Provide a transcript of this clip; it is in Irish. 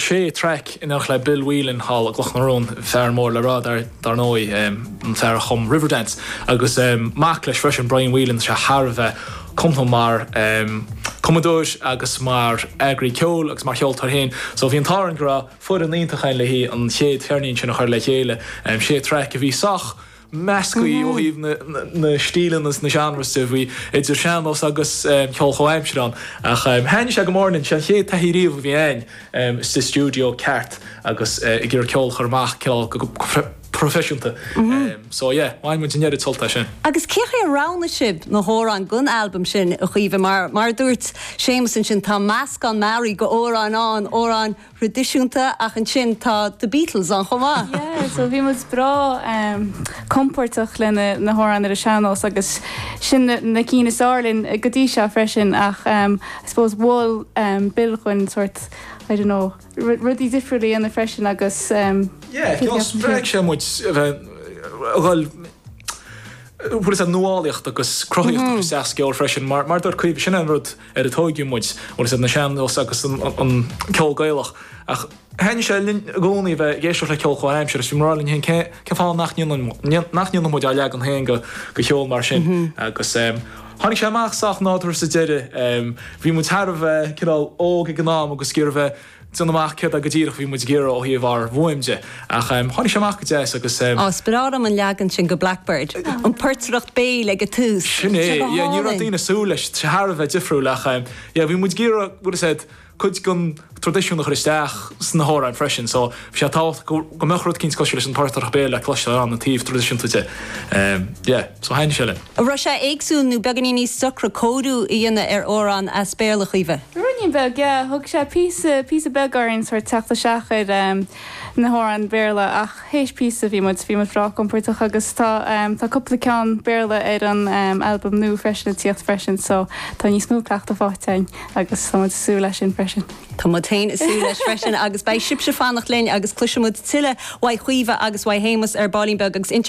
sé thraic in éineacht le Bill Whelan thall i gCloch na Rón, fear mór le rá dar ndóigh, an fear a chum Riverdance, agus mac leis freisin, Brian Whelan, tá sé thar a bheith cumasach mar chumadóir agus mar eagraí ceoil agus mar cheoltóir féin. So bhí an t-ádh orainn go raibh foireann iontach ann leis an gcéad gceirnín sin a chur le chéile. Sé thraic a bhí sách. measctha ó thaobh na stíleanna is na genres de, bhí idir shean-nós agus ceol comhaimseartha ann. Ach thaithnigh sé go mór linn, sé an chéad taithí riamh a bhí againn sa stiúideo ceart agus ag iarraidh ceol a chur amach cineál go proifisiúnta. So yeah, bhain muid an oiread sult as sin. Agus cé chaoi ar roghnaigh sibh na hamhráin don albam sin, a Chaoimhe? Mar a dúirt Séamus ansin, tá meascán mearaí d'amhráin ann, amhráin thraidisiúnta ach ansin tá The Beatles ann chomh maith. Yeah, so bhí muid breá compordach le na hamhráin ar an sean-nós agus sin na cinn is fhearr linn go dtí seo freisin ach I suppose mhol Bill dhuinn sort, I don't know, rudaí difriúil a dhéanamh freisin agus Yeah, I suppose spreag sé muid a bheith ag dul leis an nuálaíocht agus cruthaitheacht sa gceol freisin mar mar a dúirt Caoimhe sin é an rud ar a tóigeadh muid, bhuel is iad na sean-nós agus an ceol Gaelach ach thaitnigh sé linn i gcónaí a bheith ag éisteacht le ceol comhaimseartha agus bhí muid ag rá linn féin cén fáth nach ndéanfadh muid ár leagan féin go cheol mar sin agus tháinig sé amach sách nádúrtha sa deireadh. Bhí muid thar a bheith cineál óg ag an am agus gurbh é déanamh amach céard é go díreach a bhí muid ag iarraidh ó thaobh ár bhfuaim de, ach tháinig sé amach go deas agus. Á, is breá liom an leagan sin go Blackbird, an portaireacht béil ag an tús, Sin é, yeah, yeah, ní raibh daoine ag súil leis, sé thar a bheith difriúil ach yeah, bhí muid ag iarraidh, bhfuil a fhios agat, cuid den traidisiún a chur isteach sna hamhráin freisin so, Bhí sé tábhachtach go mbeadh rud éigin cosúil leis an bportaireacht béil le cloisteáil ann ó thaobh traidisiúnta de. So thaithin sé linn. An raibh sé éagsúil nó beagainín níos deacra cóiriú a dhéanamh ar amhrán as Béarla, a Chaoimhe? Rudín beag, yeah. Thug sé píosa, píosa beag orainn sórt teacht isteach ar na hamhráin Bhéarla ach théis píosa bhí muid, bhí muid breá compordach agus tá, tá cúpla ceann Béarla ar an albam nua freisin, a' tíocht freisin so tá níos mó cleachtadh faighte againn agus tá muid ag súil leis sin freisin. Tá muid féin ag súil leis freisin agus beidh sibhse ag fanacht linn agus cloisfidh muid tuilleadh uaidh Chaoimhe agus uaidh Shéamas ar baillín beag agus Inseacht.